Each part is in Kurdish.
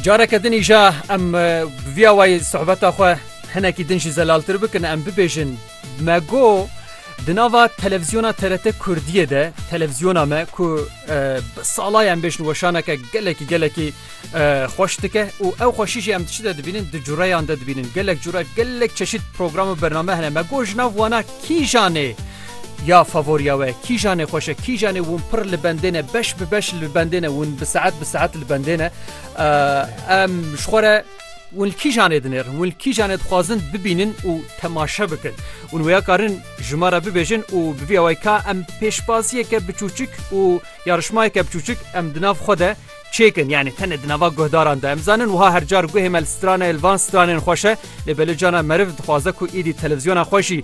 Careke din îja em bi vîya wayî sohbeta xwe hinekî din jî zelaltir bikin em bibêjin me got di nava televîzyona TRT Kurdiyê de televîzyona me ku bi sala em bêjin weşaneke gelekî gelekî xweş dike û ew xweşî jî em diçi de dibînin di cureyan de dibînin gelek cure gelek çeşît program û bername hene me got ji nav wana kîjanê Ya favorîya we kîjan e xweş e kîjan e win pir li bendê ne beş bi beş li bendê ne win bi saet bi saet li bendê ne em ji xwe re ون کی جانێ dinêr ون ki janê dixwazin bibînin û temaşe bikin û wêya karin ji me re bibêjin û bivî away ka em pêşbaziyeke biçûçik û yarişmayeke biçûçik em di nav xwe de çêkin yani tenê di nava guhdaran de em zanin wiha her car guhê me li stranê li van stranên xweşe lê belê cana meriv dixwaze ku îdî televizyona xweşî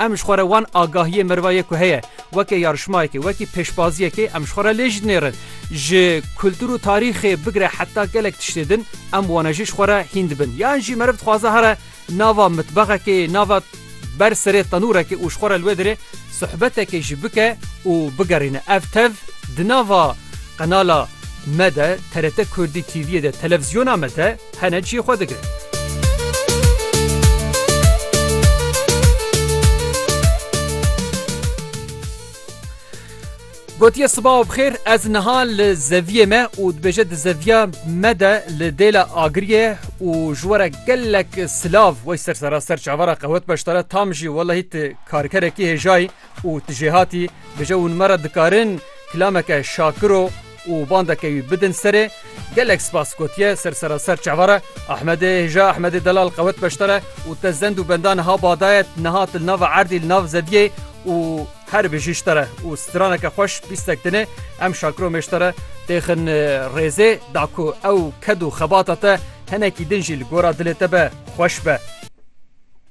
Em ji xwe re wan agahiyê meriva yê ku heye weke yarişmayekê, wekî pêşbaziyekê em ji xwe re lê jî dinêrin. Ji kultur û tarîxê bigire heta gelek tiştê din em wane jî ji xwe re hîn dibin. Yan jî meriv dixwaze here nava mitbexekê, nava ber serê tenûrekê û ji xwe re li wê derê sohbetekê jî bike û bigerîne. Ev tev di nava qenala me de, TRT Kurdî TV'yê de, televîzyona me de, Hene çî xwe digrin. Gotiye sibav bixêr ez niha li zeviyê me û dibêje di zeviya me de li dêla agiriyê û ji were gelek silav wey ser sera ser çavara qewet beşdare tam jî welahî ti karkerekî hêjayî Û tu jêhatî bije hûn me re dikarin kilameke şakiro û bandeke wî bidin serê. Gelek spas gotiye ser seraser çavara. Ahmedê hêja Ahmedê delal qewet beştare û te zend û benda niha badaye niha tu li nava erdî li nav zeviyê û her bijî ji te re û straneke xweş pîstek dinê em şakiro mêj te re têxin rêzê da ku ew ked û xebata te hinekî din jî li gora dilê te be xweş be.